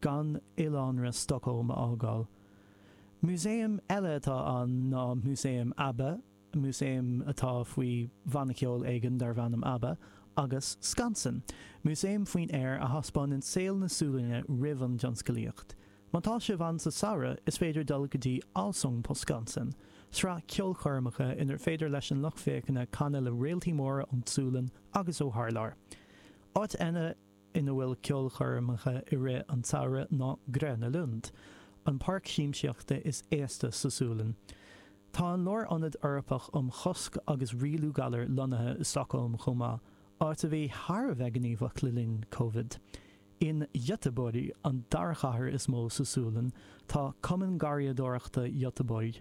gan oileánra Stockholm a fhágáil. Músaem eile atá ann ná Músaem Abba, músaem atá faoi bhanna ceoil éigin darb ainm Abba, agus Skansen, músaem faoin aer a thaispeánann saol na Sualainne roimh an dtionscalaíocht. Má tá sibh ann sa samhradh is féidir dul go dtí Allsång på Skansen, sraith ceolchoirmeacha inar féidir leis an lucht féachana canadh le réaltaí móra ón tSualainn agus ó thar lear. Áit eile. ina bhfuil ceolchoirmeacha i rith an tsamhraidh ná Gröna Lund, an páirc siamsaíochta is aosta sa Sualainn. Tá an Lárionad Eorpach um Chosc agus Rialú Galar lonnaithe i Stockholm chomh maith, áit a bhí thar a bheith gníomhach le linn Covid. In Göteborg, an dara chathair is mó sa Sualainn, tá Cumann Garraíodóireachta Göteborg,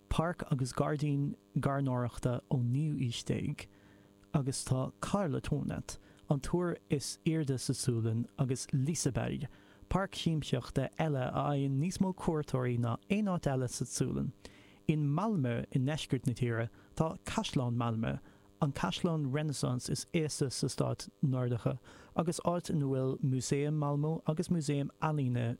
páirc agus gairdín gairneoireachta ón naoú haois déag agus tá Karlatornet, an túr is airde sa Sualainn, agus Liseberg, páirc shiamsaíochta eile a fhaigheann níos mó cuairteoirí ná aon áit eile sa tSualainn. In Malmö i ndeisceart na tíre tá Caisleán Malmö, an caisleán Renaissance is aosta sa stáit Nordacha agus áit ina bhfuil Músaem Malmö agus Músaem Ealaíne.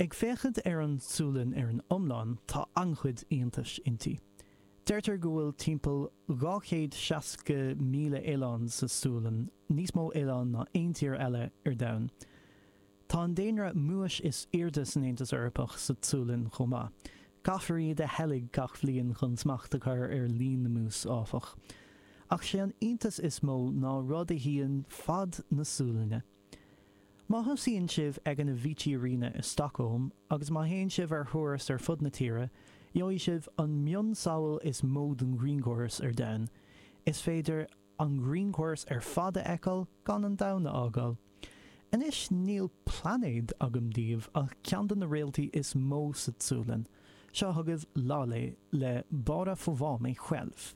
Ag féachaint ar an tSualainn ar an iomlán, tá an-chuid iontais inti. Deirtear go bhfuil timpeall 260,000 oileán sa tSualainn, níos mó oileán ná aon tír eile ar domhan. Tá an daonra múis is airde san Aontas Eorpach sa tSualainn chomh maith. Caithfear iad a sheilg gach bliain chun smacht a chur ar líon na mús, áfach. Ach sé an iontas is mó ná rud a shuíonn fad na Sualainne. Má thosaíonn sibh ag an Avicii Arena i Stockholm agus má théann sibh ar thuras ar fud na tíre, gheobhaidh sibh an mionsamhail is mó den ghrianchóras ar domhan. Is féidir an grianchóras ar fad a fheiceáil gan an domhan a fhágáil. Anois níl plainéad agam daoibh ach ceann de na réaltaí is mó sa tSualainn. Seo chugaibh Laleh le Bara Få Va Mig Själv.